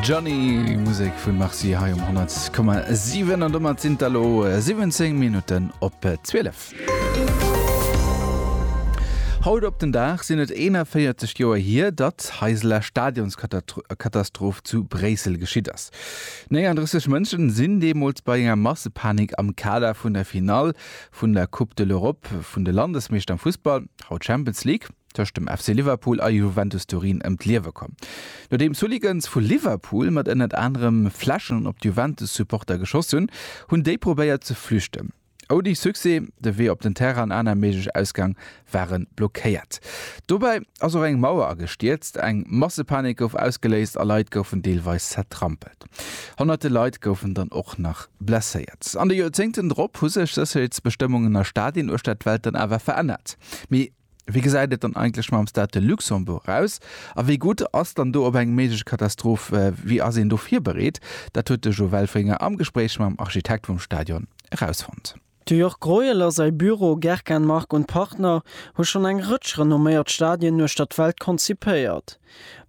Johnny Musek vun Marci hei um 10,7 an domat sinn der lo 17 Minuten op 12. Haut op den Dag sinn et 41 Joer hier, datt Heiseler Stadionskatastroph zu Bréissel geschitt ass. 39 Mënschen sinn deemools bei enger Massepanik am Kader vun der Finall vun der Coupe de l'Europe vun de Landesmeeschter am Fussball, haut Champions League, tëscht dem FC Liverpool a Juventus Turin ëm d'Liewe komm, nodeems Hooligans vu Liverpool mat ënnert anerem Fläschen op d'Juventus-Supporter geschoss hunn, hunn déi probéiert ze flüchten. Ouni Succès, de Wee op den Terrain an aner méiglech Ausgäng ware blockéiert. Dobäi ass och eng Mauer agestierzt. Eng Massepanik gouf ausgeléist a Leit goufen deelweis zertrampelt. Honnerte Leit goufen dann och nach blesséiert. An de Joerzéngten drop hu sech Sécherheetsbestëmmungen a Stadien uechter d'Welt dann awer verännert. Mee Wéi gesäit et dann eigentlech mam Stade Luxembourg aus a wéi gutt ass dann do op eng méiglech Katastroph, wéi ass een do virbereet? Dat huet de Jo Welfringer am Gespréich mam Architekt vum Stadion erausfonnt. De Jörg Greuel a säi Büro Gerkan Mark und Partner hu schonn eng Rëtsch renomméiert Stadien uechter d'Welt konzipéiert.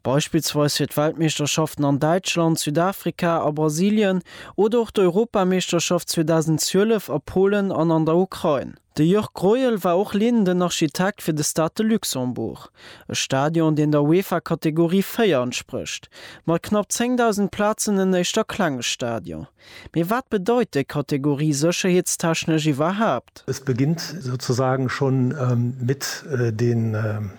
Beispillsweis fir d'Weltmeeschterschaften an Däitschland, Südafrika a Brasilien oder och d'Europameeschterschaft 2012 a Polen an an der Ukrain. De Jörg Greuel war och leedenden Architekt fir de Stade de Luxembourg, e Stadion, deen der UEFA Kategorie 4 entsprécht. Mat knapp 10.000 Plazen en éischt a klenge Stadion. Mee wat bedeit déi Kategorie sécherheetstechnesch iwwerhaapt? Es beginnt sozusagen schon mit den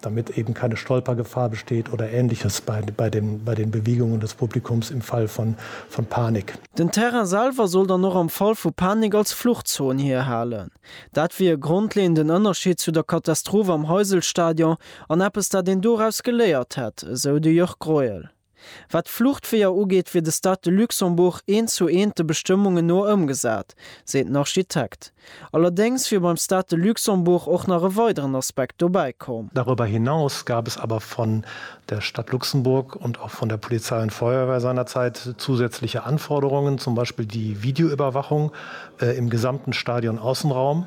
damit eben keine Stolpergefahr besteht oder Ähnliches bei den Bewegungen des Publikums im Fall von Panik. Den Terrain selwer soll dann och am Fall vu Panik als Fluchtzon hierhalen. Dat wier e grondleeënden Ënnerscheed zu der Katastroph am Heysel-Stadion an eppes, dat een doraus geléiert hätt, esou de Jörg Greuel. Wat d'Fluchtweeër ugeet, wier de Stade de Luxembourg eent zu eent de Bestëmmungen no ëmgesat, seet den Architekt. Allerdéngs wier beim Stade de Luxembourg och nach e weideren Aspekt dobäi komm. Darüber hinaus gab es aber von der Stadt Luxemburg und auch von der Polizei und Feuerwehr seinerzeit zusätzliche Anforderungen, zum Beispiel die Videoüberwachung im gesamten Stadionaußenraum,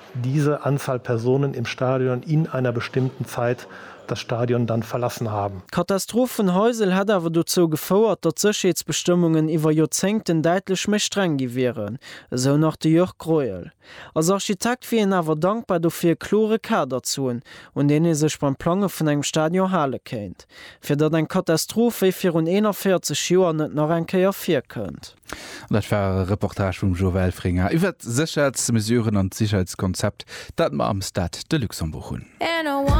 Diese Anzahl Personen im Stadion in einer bestimmten Zeit das Stadion dann verlassen haben. D'Katastroph vun Heysel hätt awer dozou gefouert, datt d'Sécherheetsbestëmmungen iwwer Joerzéngten däitlech méi streng gi wieren, esou nach de Jörg Greuel. Als Architekt wier hien awer dankbar dofir, e klore Kader ze hunn, un deen ee sech beim Plange vun engem Stadion hale kéint, fir datt eng Katastroph wéi virun 41 Joer net nach eng Kéier virkënnt. Dat war e Reportage vum Joe Welfringer iwwer d'Sécherheetsmesuren an d'Sécherheetskonzept, dat mer am Stade de Luxembourg hunn.